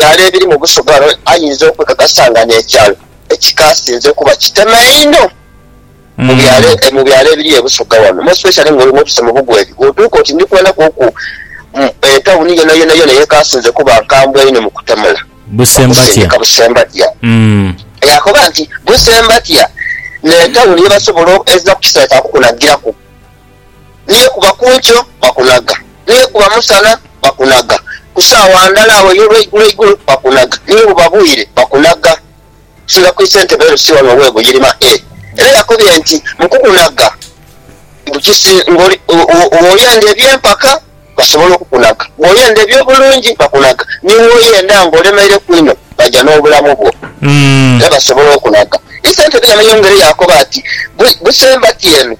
ebyalo ebiri mu busugalo ayinza okwekakasa nga n'ekyalo ekikaasinze kuba kitema einho mu byalo ebiri e Busoga wano most especially ng'oli mwotuse mu Bugweri bw'otuuka oti ndi kwenda kwoku etawuni yonayonayona eyekaasinze kuba nkambwe inho mu kutemula okusindika Busembatya. Yaakoba nti Busembatya n'etawuni ye basobola ezira ku kiseera kya kukunagiraku. Ni yekuba ku nkyo, bakunhaga. Ni yekuba musana, bakunhaga. Ku saawa ndhala agho ey'olweigulo igulo, bakunhaga. Ni bwebuba bwire, bakunhaga. Okusinga ku ise nte beeru si wano owe Buyirima e. Era yakobye nti, Mu kukunhaga, bukisi ng'oli, bw'oyenda eby'empaka, basobola okukunhaga. Bw'oyenda eby'obulungi, bakunhaga. Ni bw'oyenda ng'olemeireku inho, baja n'obulamu bwo. Era basobola okunhaga. Ise nte bwe yamanya engeri, yakoba ati, Busemba ti eno.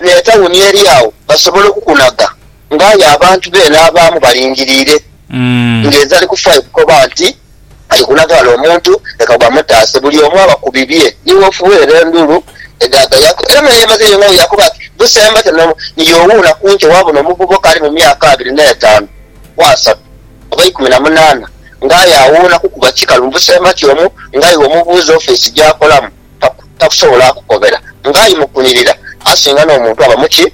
n'etauni eri agho basobole okukunhaga ng'aye abantu be n'abaamu balingiriire. Ng'enze ali kufa ye kukoba nti, Ali kunhaga ghale omuntu, leka bamutaase, buli omu aba ku bibye. Ni woofuweera endhulu edhaagayaku. Era mwenhe yemaze yeyong'agho yaakoba ati, Busemba te ni yoowuuna ku nkyo waabona omuvubuka ali mu myaka abiri n'etaanu ku asatu oba eikumi na munaana ng'aye awuuna kukuba kikalu mu busemba kyomu ng'aiwe omubuuza ofiisi gy'akolamu. takusobola kukobera ng'aye mukunirira asinga n'omuntu aba mu ki?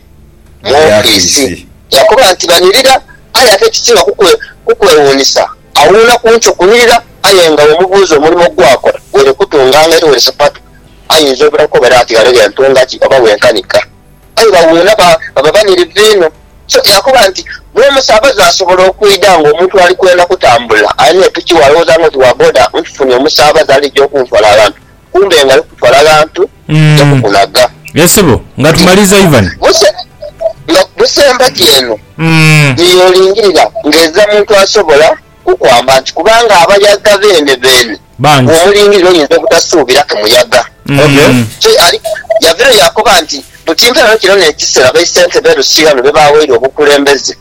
Mu ofiisi. Yakoba nti, Banirira, aye ate ekisinga kukwewuunisa, awuuna ku nkyo kunirira aye nga bw'omubuuza omulimo gw'akola, weene kutunga ng'aite wene sapatu, ayinza obutakukobera ati ghano ghe ntunga ki oba ghe nkanika. Aye bawuuna baba banirivu inho. So yakoba nti, N'omusaabaze asobola okwidha nga omuntu ali kwenda kutambula, alina epiki we alowooza nga oti wa boda, nfufunye omusaabaze alija okunfala aghantu, kumbe nga ali kukutwala aghantu aja kukunhaga. Ye sebo, nga tumaliiza Ivan. Buse, nga buse empagi eno ye y'olingirira ng'eza muntu asobola kukwamba nti kubanga abayaga beene beene. bangi. Omulingirire oyinza obutasuubira ke muyaga. Kyo ali yavirayo yaakoba nti, Mu kimperayo kino n'ekiseera baisentebe e Rusirano be baaweire obukulembeze,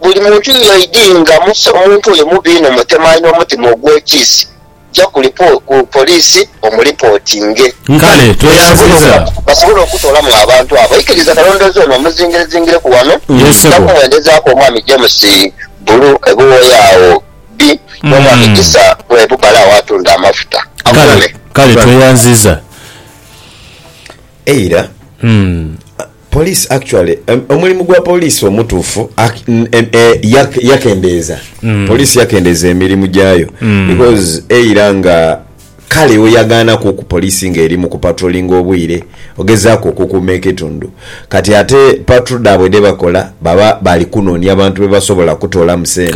buli muntu yiyo idi nga muse omuntu oyo mubi inho mutemu alina omutima ogw'ekiisi, ja ku poliisi omulipootinge. Kale tweyanziza. Basobole okutoolamu abantu abo. Ikiriza kalondoozi ono omuzingirezingireku wano, nja kumwendezaaku Omwami James Bulu e Buwoya agho Ddi bw'oba mugisa gwe bubala awatunda amafuta? Kale, Agume. kale tweyanziza. Eira police actually omulimu gwa police omutuufu yakendeeza police yakendeeza emirimu gyayo because eira nga Kale oyagaanaku ku poliisi ng'eri mu kupatrolinga obwire, ogezaaku okukuuma ekitundu. Kati ate patro dhaabwe dhe bakola baba bali kunoonia bantu be basobola okutoolamu sente.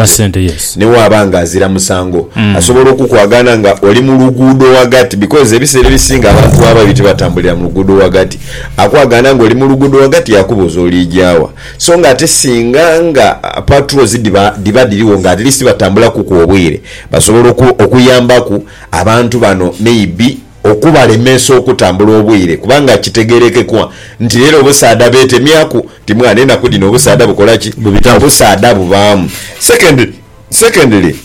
Ni bw'aba ng'azira musango, asobola okukwagaana nga oli mu luguudo ghagati because ebiseera ebisinga abantu baba babi tibatambulira mu luguudo ghagati. Akwagaana ng'oli mu luguudo ghagati yaakubuuza oliija wa. So ng'ate singa nga patrols dhiba dhiba dhirigho nga at least batambulakuku obwire, Basobola okuyambaku abantu bano maybe okubalemesa okutambula obwire kubanga kitegerekekwa nti rero obusaadha betemyaku nti mwana enaku dhino obusaadha bukola ki? Obusaadha bubaamu. Secondly secondly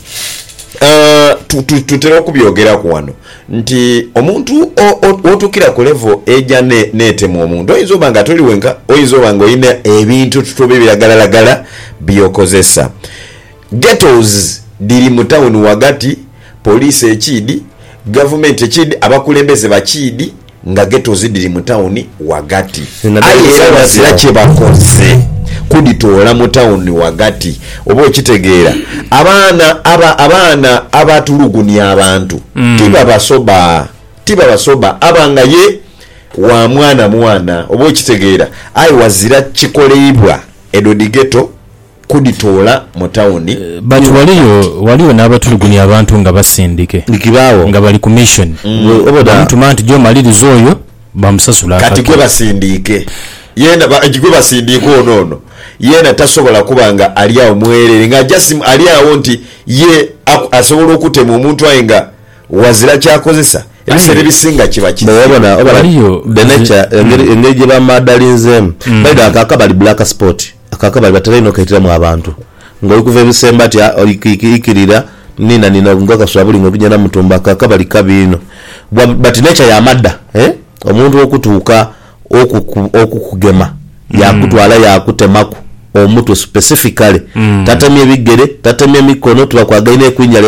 tutera okubyogeraku wano nti omuntu wotukira ku level eja netema omuntu oyinza oba nga toli wenka oyinza oba nga olina ebintu tutuba ebiragalalagala byokozesa. Ghettos dhiri mu tawuni ghagati, poliisi ekiidhi, gavumenti ekiidhi, abakulembeze bakiidhi nga ghettos dhiri mu tawuni ghagati aye era ghazira kye bakoze kudhitoola mu tawuni ghagati, oba okitegeera. Abaana aba, abaana abatulugunya abantu tibabasoba, tibabasoba aba nga ye wa mwana mwana, oba okitegeera, aye ghazira kikoleibwa edho dhi ghetto. kudhitoola mu tawuni. But waliyo waliyo n'abatulugunya abantu nga basindike Ni kibaawo. nga bali ku mission. Gwe oba da. Bamutuma nti gy'omaliriza oyo bamusasula Kati akake. gwe basindiike yeena ba gwe basindiike ono ono yeena tasobola kuba nga ali agho mwereere nga just ali agho nti ye aku asobola okutema omuntu aye nga ghazira ky'akozesa. Ebiseera Aye ebisinga kiba Mbu oba kizibu. da oba da waliyo the nze nature engeri engeri gye bamaadalinzeemu. By the way ako akabali black spot. Ako akabali batera inho okaitiramu abantu nga oli kuva ebisemba ati oli kwikirira nina nina nga kaswa buli nga oli kugya Namutumba. Ako akabali kabi inho but nature ya madha omuntu okutuuka okukugema yakutwala yakutemaku omutwe specifically tatemye bigere tatemye mikono tibakwagaine ku njala.